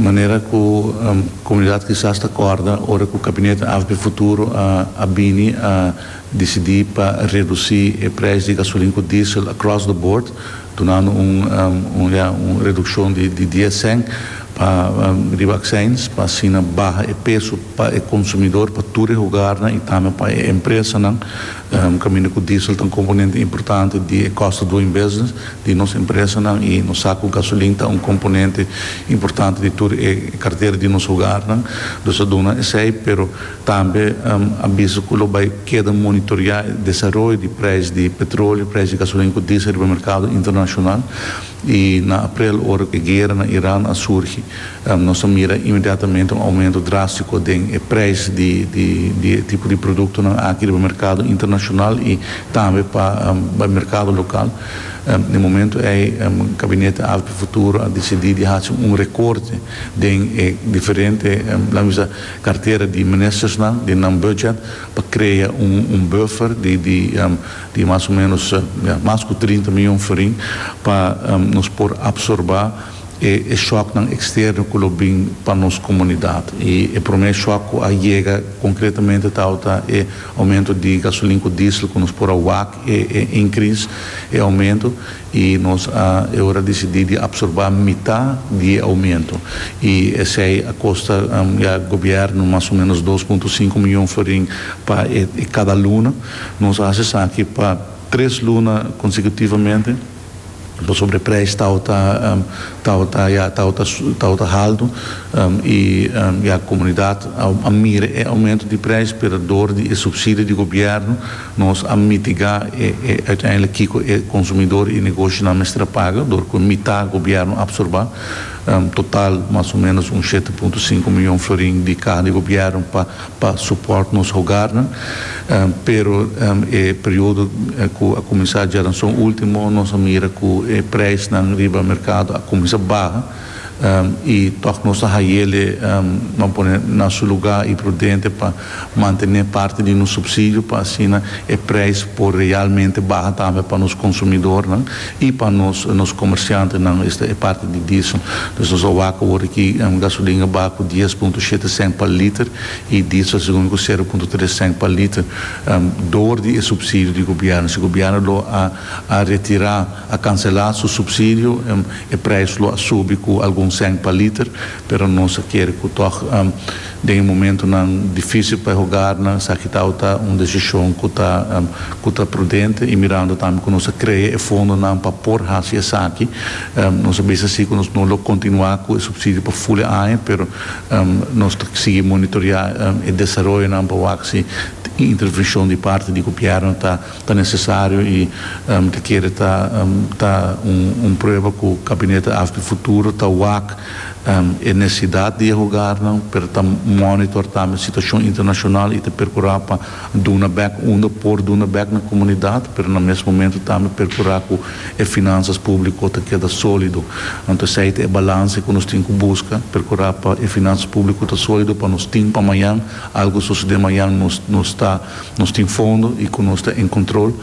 Manera ku komunidat kisas ta kòrda ora ku Kabinet AFB Futuro a bini a disidí pa redusí e preis di gasolin ku diesel across the board, dunandu un ya un redukshon di dies sènt pa riba aksèins pa asina baha e peso pa e konsumidor, pa tur e hogarnan i tambe pa e empresanan kaminda ku diesel ta un komponente importante di e kòst of doing business. di nos empresanan i nos sa ku gasolin ta un komponente importante di tur e kartera di nos hogarnan. Nos ta duna esei, pero tambe a bisa ku lo bai keda monitoreá e desaroyo di preis di petroleo, preis di gasolin ku diesel riba merkado internashonal. I na aprel ora e guera na Iran a surgi, nos a mira inmediatamente un oumento drástiko den e preis di e tipo di produktonan aki riba merkado internashonal i tambe pa merkado lokal. Na e momento ei Gabinete Alto pa e Futuro a decidí di haci un recorte den e diferente, laga mi bisa, cartera di ministersnan, den nan budget, pa crea un buffer di mas o menos, ya, mas cu trinta miyon forin, pa nos por absorba e shocknan externo cu lo bin pa nos comunidad. I e prome shock cu a yega concretamente tawata e aumento di gasolin cu diesel cu nos por a wak. E increase, e aumento, y nos a eora decidi di absorba mita di e aumento, y esey a costa ya gobierno mas o menos dos punto cinco miyon forin pa e cada luna. Nos a haci esaki pa tres luna consecutivamente. pasobra e prijs tabata tabata ya tabata tabata haltu y ya comunidad a mira e aumento di prijs pero door di e subsidio di gobierno nos a mitiga e e uiteindelijk kico e consumidor y negoshonan mester a paga door cu mita gobierno a absorba total mas o menos un shete punto sinku miyon florin di caha di gobierno pa pa support nos hogarnan, pero e periodo cu a cuminsa djaranson ultimo nos a mira cu e prijsnan riba mercado a cuminsa baha y toch nos ta hayele nan pone na su lugar y prudente pa mantene parti di nos subsidio pa asina e prijs por realmente baha tambe pa nos consumidornan. Y pa nos nos comerciantenan esta e parti di diesel. Dus nos a wak awor aki gasolina a baha cu dies punto shete cent pa liter y diesel segun mi cu sero punto tres cent pa liter door di e subsidio di gobierno. Si gobierno lo a a retira, a cancela su subsidio e prijs lo a subi cu algun cent pa liter pero nos a kere cu toch Den e momentunan difísil pa e hogarnan, esaki tau ta un desishon ku ta ku ta prudente i mirando tambe ku nos a krea e fondonan pa por hasi esaki. Nos a bisa si ku nos no lo kontinuá ku e supsidio pa ful e aña, pero nos ta sigui monitoreá e desaroyonan pa wak si un intervenshon di parti di gobièrnu ta ta nesesario i ta kere ta ta un prueba ku Gabinete AFP Futuro ta wak e necesidad di e hogarnan, pero ta monitor tambe situacion internacional y ta percura pa duna bek unda por duna bek na comunidad, pero na mes momento tambe percura cu e finanzas publico ta keda solido. Anto esey ta e balance cu nos tin cu busca, percura pa e finanzas publico ta solido pa nos tin pa mayan, algo sosode mayan nos nos ta nos tin fondo y cu nos ta en control.